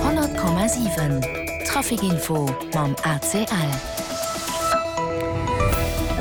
100,7 Trafic info mam ACL.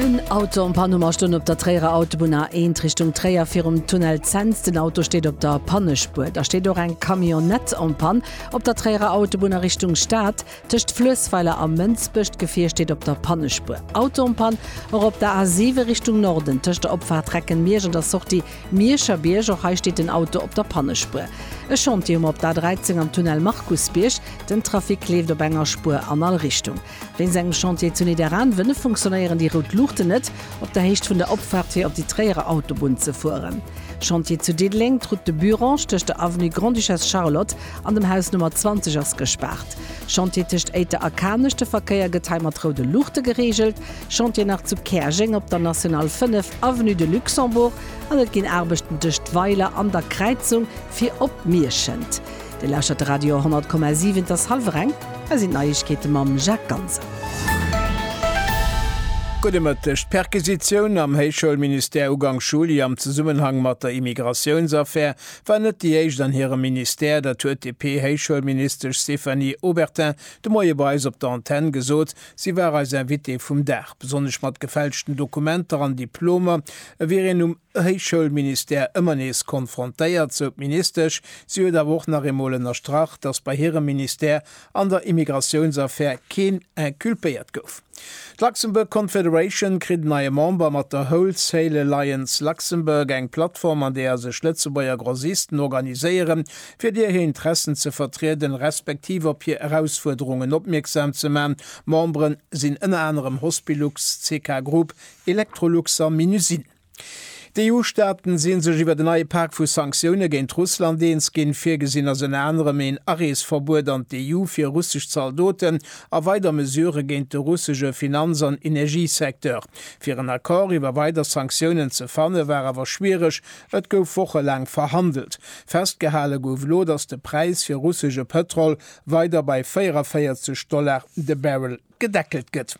En Auto am Panne mar stoung op der Tréierer Autobunn A1 Richtung Tréier virum Tunnel Zens. Den Auto steet op der Pannespuer. Da steet och eng Camionnette en Panne op der Tréierer Autobunn a Richtung Stad tëscht Fluessweiler a Mënsbech. D'Gefier steet op der Pannespuer. Auto en Panne och op der A7 Richtung Norden tëscht der Opfaart Recken-Miersch an der Sortie Mierscher Bierg, och hei steet den Auto op der Pannespuer. E Chantier hu mer op der A13 am Tunnel Markusbierg. Den Trafic leeft op enger Spuer an all Richtung. Wéinst engem Chantier zu Nidderaanwen funktionéieren déi rout Luuchten net op der Héicht vun der Opfaart fir op déi Tréierer Autobunn ze fueren. Chantier zu Diddeleng, d'Route de Burange tëscht der Avenue Grande-Duchesse Charlotte an dem Haus Nummer 20 ass gespaart. Chantier tëscht Éiter a Kanech, de Verkéier gëtt hei mat roude Luuchte gereegelt. Chantier nach zu Käerjeng op der National 5. Avenue de Luxembourg an et ginn Aarbechten tëscht Weiler an der Kräizung fir op Mierschent. Dir lauschtert de Radio 100,7, et ass hallwer eng, hei sinn d'Neiegkeete mam Jacques Ganser. Gudde Mëtteg. D'Perquisitioun am Héichschoulministère ugank Juli am Zesummenhang mat der Immigratiounsaffär war net déi éischt an hirem Ministère. Dat huet d'DP-Héichschoulministesch Stéphanie Obertin de Moie bei eis op der Antenn gesot. Si war eis Invitée vum Dag, besonnesch mat gefälschten Dokumenter an Diplomer wier een um Héichschoulministère ëmmer nees konfrontéiert, sou d'Ministesch. Si huet awer och nach eemol ënnerstrach, datt bei hirem Ministère an der Immigratiounsaffär keen inculpéiert gouf. D'Luxembourg Confederation kritt en neie Member mat der Wholesale Alliance Luxembourg, eng Plattform, an deeër sech Lëtzebuerger Grossisten organiséieren, fir dir hir Interessen ze vertrieden, respektiv op hir Erausfuerderungen opmierksam ze man. Memberen sinn ënner anerem Hospilux, CK Group, Electrolux a Minusine. D'EU-Staaten sinn sech iwwer en neie Pak vu Sanktioune géint Russland eens ginn. Virgesinn ass ënner anerem een Areesverbuet an d'EU fir russesch Zaldoten a weider Mesurë géint de russesche Finanz an Energiesecteur. Fir en Accord iwwer weider Sanktiounen ze fanne war awer schwiereg, Et gouf wochelaang verhandelt. Festgehale gouf elo, datt de Präis fir russesche Pëtrol weider bei 44 Dollar de Barrel gedeckelt gëtt.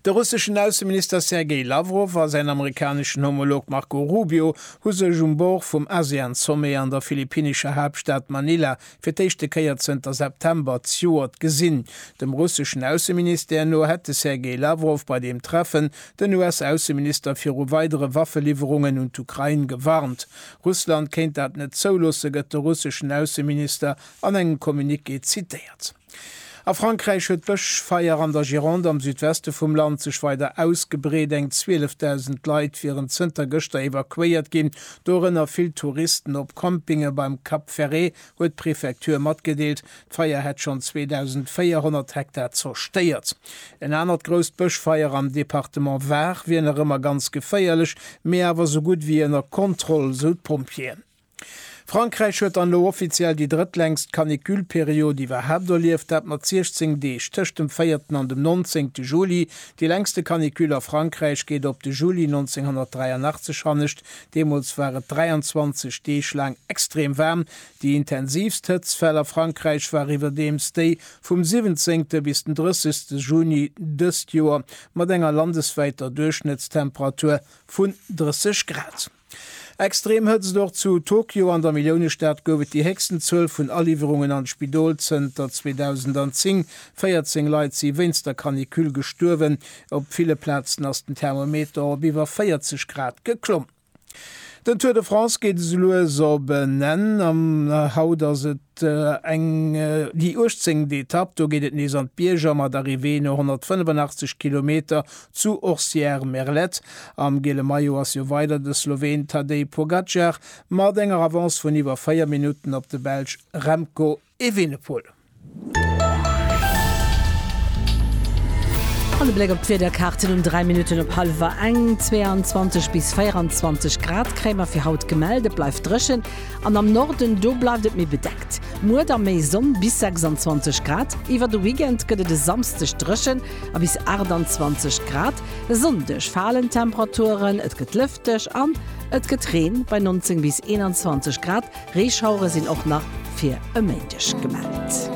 De russeschen Ausseminister Sergej Lawrow a säin amerikaneschen Homolog Marco Rubio hu sech um Bord vum ASEAN-Sommet an der philippinnescher Haaptstad Manila fir d'éischte Kéier zënter September d'Joert gesinn. Dem russeschen Ausseministère no hätt de Sergei Lawrow bei deem Treffen den US-Ausseminister viru weidere Waffeliwwerungen un d'Ukrain gewarnt. Russland kéint dat net zouloossen, gëtt de russeschen Ausseminister an engem Communiqué zitéiert. A Frankräich huet d'Bëschfeier an der Gironde am Südweste vum Land sech weider ausgebreet. Eng 12.000 Leit wieren zënter gëschter evakuéiert ginn, dorënner vill Touristen op Campinge beim Cap Ferret, huet d'Prefektur matgedeelt. D'Feier hätt schonn 2.400 Hektar zerstéiert. En anert grousst Bëschfeier am Departement Var wier nach ëmmer ganz geféierlech, mee awer sou gutt wéi ënner Kontroll, sou d'Pompjeeën. Frankräich huet dann elo offiziell déi drëttlängst Canicule-Period iwwerhaapt erlieft, dat mat 16 Deeg tëscht dem véierten an dem nonzéngte Juli. Déi längste Canicule a Frankräich geet op de Juli 1983 hannescht, deemools war et 23 Deeg laang extrem waarm. Déi intensiivst Hëtztfäll a Frankräich war iwwerdeems déi vum 17. bis den 30. Juni dëst Joer, mat enger landeswäiter Duerchschnëttstemperatur vun 30 Grad. Extrem Hëtzt Och zu Tokio an der Milliounestad gouf et déi héchsten Zuel vun Aliwwerungen an d'Spidol zënter 2010. 14 Leit si wéinst der Canicule gestuerwen. Op ville Plazen ass den Thermometer op iwwer 40 Grad geklomm. Den Tour de France geet esou lues op en Enn. Haut ass et déi 18. Etapp. Do geet et nees an d'Bierger mat Arrivée no 185 Kilometer Zu Orsières-Merlette am gele Maillot ass jo weider de Sloween Tadej Pogacar mat enger Avance vun iwwer 4 Minutten op de Belsch Remco Evenepoel. An e Bléck op d'Wiederkaarten um 3 Minutten op hallwer eng, 22 bis 24 Grad kréie mer fir haut gemellt. Et bleift dréchen an am Norden do bleift et méi bedeckt. Muer da méi Sonn bis 26 Grad. Iwwer de Weekend gëtt et e Samsdeg dréchen. a bis 28 Grad. E Sonndeg falen d'Temperaturen, et gëtt lëfteg an et gëtt Reen bei 19 bis 21 Grad. Reeschauere sinn och nach fir e Méindeg gemellt.